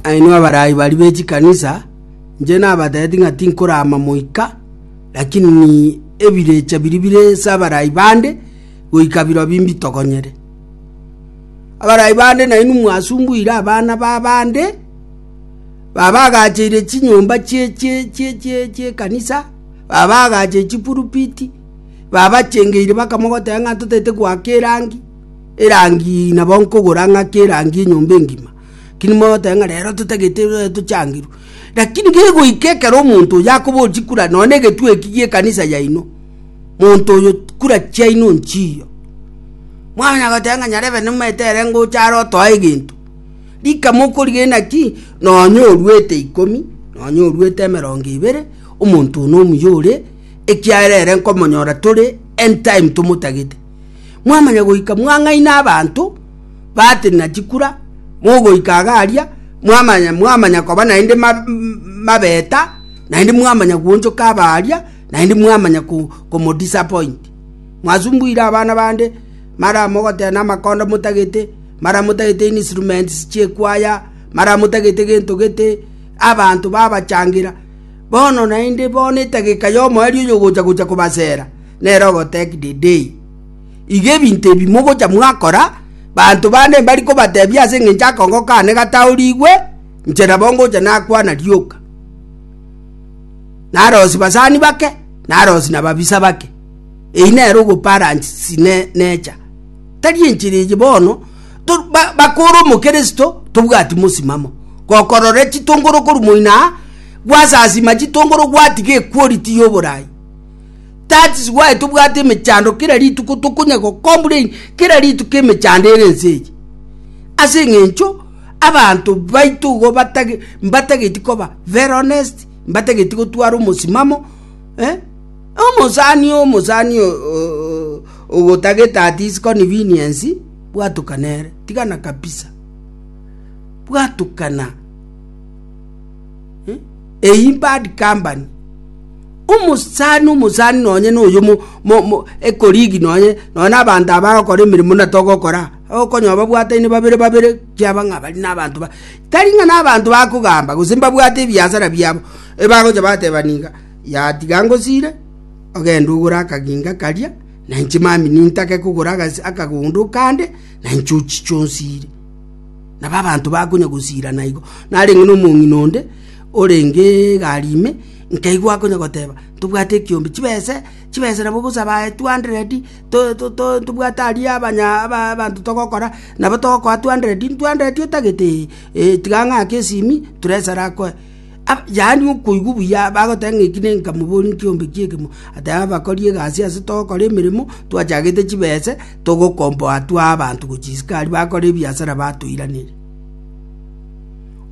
Nainwe abarai baria be chikanisa, inche nabateeti ng'a tinkoraama moika, lakini ebirecha biria bire ase abarai bande goika birobio imbitogonyere. Abarai bande nainwe mwasumbuire abana b'abande, babagacheire chinyomba chie chie chie chie chi'ekanisa, babagacheire chipurupiti, babachengeire baka mogoteba ng'a totaete goaka erangi. erangi nabo nkogora ng'ake erangi enyomba engima keri mogoteba ng'a rero totagete eh, tochangirwe lakini gegoika ekero omonto oyo akoba ochi kura nonya na egetwe eki gi'ekanisa yaino monto oyo kura chiaino nchiyo mwamanya goteba ng'a nyarebe nimaete ere ngocha are otoa egento rika mokorigena ki nonya oruete ikomi nonya oruete emerongo ebere omonto oyo nomuya ore ekiagera ere nkomonyora tore end time tomotagete Mwamanya goika mwang'aine abanto batenena chikura, mogoika iga aria mwamanya mwamanya koba naende mabeta, naende mwamanya gwonchoka aba aria, naende mwamanya komodisappoint. Mwasumbuire abana bande, mara mogoteba namakondo motagete, mara motagete instruments chiekwaya, mara motagete gento gete, abanto babachangera. Bono naende bono etageka yomo erio oyogocha gocha kobasera. Nere ogotebi Deidei, iga ebinto ebi mogocha mwakora, banto bane mbari kobatebia ase engencho akongo kane gataorigwe, inche nabo ngocha nakwana rioka. Narosi basani bake, narosi na babisa bake. Eyi nere ogoparansi ne necha. Tari enchera eye bono, to ba bakore omokristo tobwati mosimamo, gokorora chitongoro korwa moino aa, gwasasima chitongoro gwatiga equality ya oborai. That's why tobwate emechando kera rituko tokonya go complain kera rituko emechando ere ense eye. Ase eng'encho abanto baito igo batage mbatageti koba very honest, mbatageti gotwara omosimamo eh? Omosani omosani ogotagete at his convenience bwatukana ere tigana kabisa. Bwatukana. Eye in bad company. Omosani omosani nonye noyo mo, mo, mo ekorigi nonye nonye na abanto abagokora emeremo na togokora okonyo babwataine babere babere kiaba ng'a bari na abanto ba tari ng'a na abanto bakogamba gose mbabwate ebiasara biabo ebagocha bateba niga ya tiga ngosire ogende ogore akaginga karia na inche mambia nintake kogora agas akagondo kande na inche ochiche onsire. Nabo abanto bakonya gosiira naigo. Narenge nomong'ina onde orenge egari ime, nkaigwa akonya goteba, Ntobwate ekiombe, chibese, chibese nabo ogosaba aye two hundred, to- to- to- ntobwate aria abanya aba- abanto togokora, nabo togokoa two hundred, two hundred otagete? Ee, ee tiga ng'ake esimi, turesara akoe. Yaani okoigwa buya bagoteba ng'a eki nenka mobori nkiombe ki'ekemo, ateba abakori egasi ase togokora emeremo, twachagete chibese, togokomboa twae abanto gochia isiko aria bakore ebiasara batoiraneria.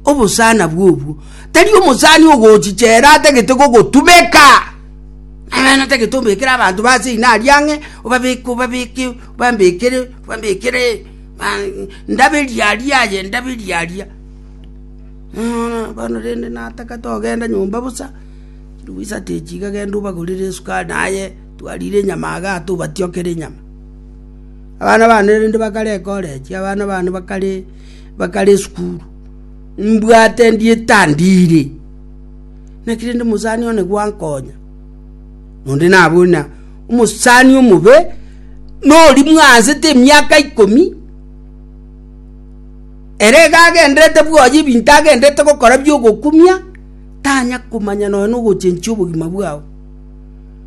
Obosana bw'obwo, tari omosani ogochia chela atagete gogotumeka, eeh natagete obekere abanto ba ase ina aria ang'e, obabeke obabeke obambekere obambekere, aah ndaberi aria aye ndaberi aria. Bono rende natagete ogenda nyomba bosa, chilifu isato echi iga genda obagorere esukari, naye twarire enyama iga ata obatiokere enyama. Abana bane rende bakare ecollege, abana bane bakare bakare esukuru, mbwate ndiete andiire, naki rende omosani one gwankonya, onde nabo na omosani omobe, nori mwansete emiaka ikomi. Ere iga agendererete bwoye ebinto agendererete gokora bi'ogokumia, tanya komanya nonya nogochenchia obogima bwao.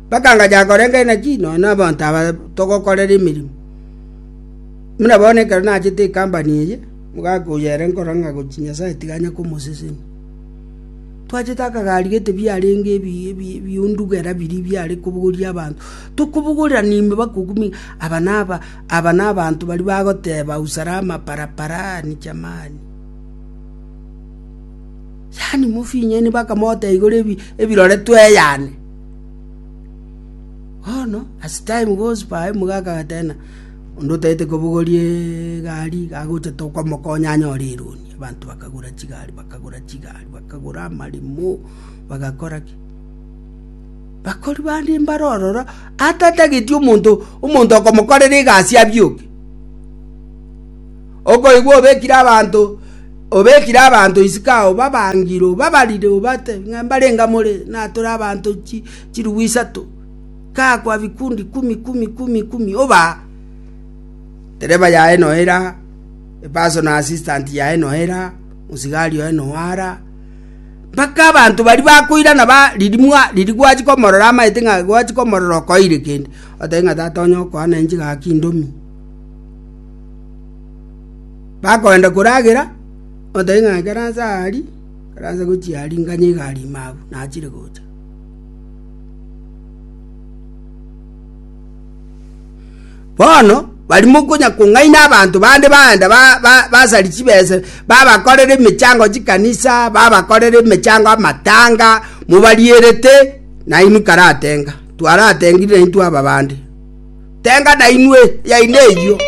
Mpaka ngacha korenta inaki nonya nabaanto aba togokorera emeremo. Buna bono ekero nachete ekampani eye, omogaka oyo ere nkora ng'a gochi Nyasaye tiga anye komoseseni. Twachete akagari gete biarenge ebi ebi ebiundugera biria biare kobogoria abanto, tokobogorera na ime bakokumia aba naba. Aba nabanto baria bagoteba Usare amaparapara aa Nijamani. Yaani mofinyeni mpaka mote igoro ebirore tweyane. Bono as time goes by omogaka agatena onde otagete kobogorie egari gagocha tokomokonya anyore eroni. Abanto bakagora chigari bakagora chigari bakagora amaremo bagakora ki. Bakori bande mbare ororo atatageti omonto, omonto okomokorera egasi abioke. Okoigwa obekire abanto, obekire abanto isiko ao babangire, obabarire, obate ng'a mbare enga more, natore abanto chi, chirugwa isato, gakwa bikundi kumi, kumi, kumi, kumi, obaa. Dereba yaye noe era, epersonal assistant yaye noe era, mosigari oye noe ara, mpaka abanto baria bakoirana baririmwa ririgwa achia komorora amaete ng'a gwachia komorora okoeire kende otae ng'a tata onye okoana inche gaki indomie bakoenda koragera otae ng'a ekero ase ari ekero ase gochia ari nganye egari ime abwo nachire gocha Bono bari mokonya kong'aina abanto bande baenda basaria chibesa, babakorera emechango chikanisa, babakorera emechango amatanga, mobarierete, nainwe karatenga. Twaratengire naintwe aba bande. Tenga nainwe, yaino eyio.